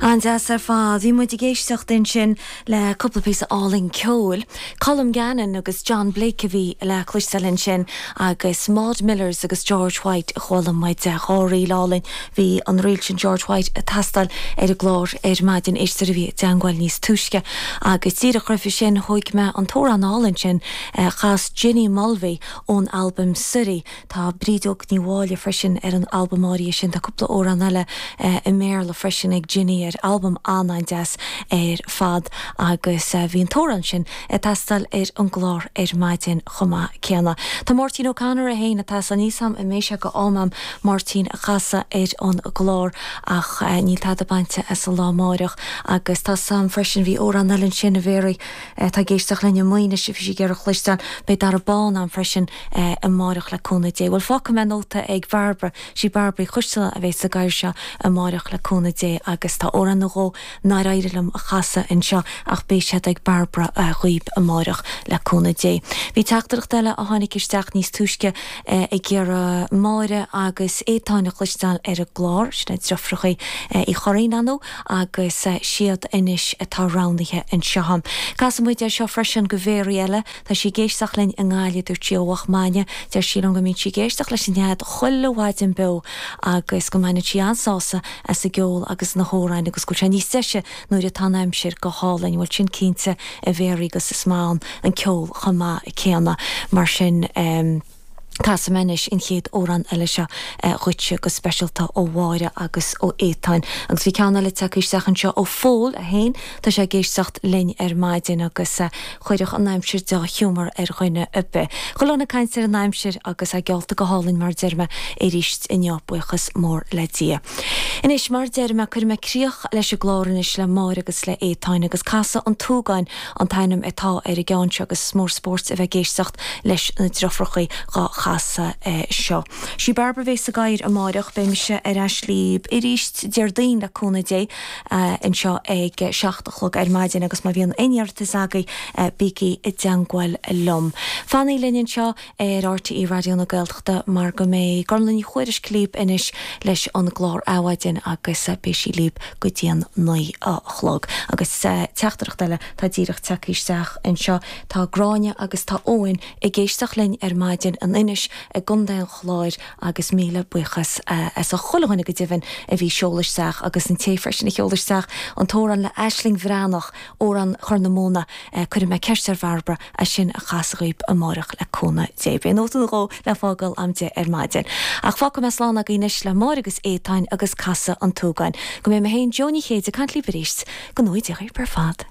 An-deas ar fad. Bhí muid ag éisteacht ansin le cúpla píosa álainn ceoil. Colm Gannon agus John Blake a bhí le cloisteáil ansin agus Maud Millers agus George White a chuala muid, dhá ríl álainn. Bhí an ríl sin George White ag teastáil ar an gclár ar maidin, éisteoir a bhí i dteagmháil níos túisce. Agus díreach roimhe sin, thóg mé an t-amhrán álainn sin a chas Jenny Mulvey ón albam Suirí, Tá Bríd Óg Ní Mháille freisin ar an albam áirithe sin. Tá cúpla amhrán eile i mBéarla freisin ag Jenny ar albam an-an-deas ar fad agus bhí an t-amhrán sin ag teastáil ar an gclár ar maidin chomh maith céanna. Tá Máirtín O'Connor é féin, atá san fhíseham a mbeidh sé go h-om am Máirtín a chasadh ar an gclár ach níl tada bainte as an lá amáireach agus tá a fhios agam freisin, bhí amhrán eile ansin a Mhéaraí, atá ag éisteacht linn i Maínis, bhí sí ag iarraidh a chloisteáil, beidh Dara Bán ann freisin amáireach le cúnamh Dé. Bhuel, fágfaidh mé nóta ag Bairbre, sí Bairbre Uí Choisteala a bheidh sa gcathaoir seo amáireach le cúnamh Dé agus tá amhrán nó dhó nár éirigh liom a chasadh anseo ach beidh siad ag Bairbre dhaoib amáireach le cúnamh Dé. Bhí teachtaireacht eile a tháinig isteach níos túisce ag iarraidh Máire agus Étáin a chloisteáil ar an gclár, sin iad Deirfiúrachaí Uí Churraoin, an. agus siad anois atá roghnaithe anseo. Casfaidh muid é seo freisin go Mhéaraí eile, tá sí ag éisteacht linn i nGaillimh, dúirt sí ó Loch Maine, deir sí liom go mbíonn sí ag éisteacht leis an Nead chuile mhaidin beo agus go mbaineann sí an-sásamh as an gceol agus na hamhráin agus go bhfuil sé níos deise nuair atá an aimsir go hálainn. Bhuel sin cinnte a Mhéaraí agus is maith ann an ceol chomh maith céanna mar sin. Casfaidh mé anois an chéad amhrán eile seo dhuitse, go speisialta ó Mháire agus ó Étáin. Agus bhí ceann eile tagtha isteach anseo ó Phól, é féin, tá sé ag éisteacht linn ar maidin, agus chuirfeadh an aimsir dea-ghiúmar ar dhuine ar bith. Go leor ag caint ar an aimsir, agus í geallta go hálainn, mar a deir mé, aríst inniu, buíochas mór le Dia. Anois, mar a deir mé, cuirfidh mé críoch leis an gclár anois le Máire agus le Étáin, agus Casadh an tSúgáin, an t-ainm atá ar an gceann seo agus is mór an spóirt a bheith ag éisteacht leis na deirfiúrachaí dhá chasadh seo. Sí Bairbre a bhéas sa gcathaoir amáireach. Beidh mise ar ais libh aríst Déardaoin le cúnamh Dé anseo ag seacht a chlog ar maidin agus má bhíonn aon iarratas agaibh bígí i dteangmháil liom. Fanaigí linn anseo ar RTÉ Raidió na Gaeltachta mar go mbeidh Gormfhlaith Ní Thuairisg líb anois leis an gclár Adhmhaidin agus beidh sí líb go dtí an naoi a chlog. Agus teachtaireacht eile atá díreach tagtha isteach anseo. Tá Gráinne agus tá Eoin ag éisteacht linn ar maidin in Inis i gContae an Chláir agus míle buíochas as ucht chuile dhuine go deimhin a bhí ag seoladh isteach agus an té freisin a sheol isteach an t-amhrán le Aisling Bhreathnach, Amhrán Chorr na Móna, cuirfidh mé ceist ar Bhairbre as sin a chasadh dhaoib amáireach le cúnamh Dé. Beidh nóta nó dhó le fágáil am deich ar maidin. Ach fágfaidh mé slán agaí anois le Máire agus Étáin agus Casadh an tSúgáin. Go mbeidh mé féin, Joe Ní Chéide, ag caint líob aríst. Go ngnóthaí Dia dhaoib ar fad.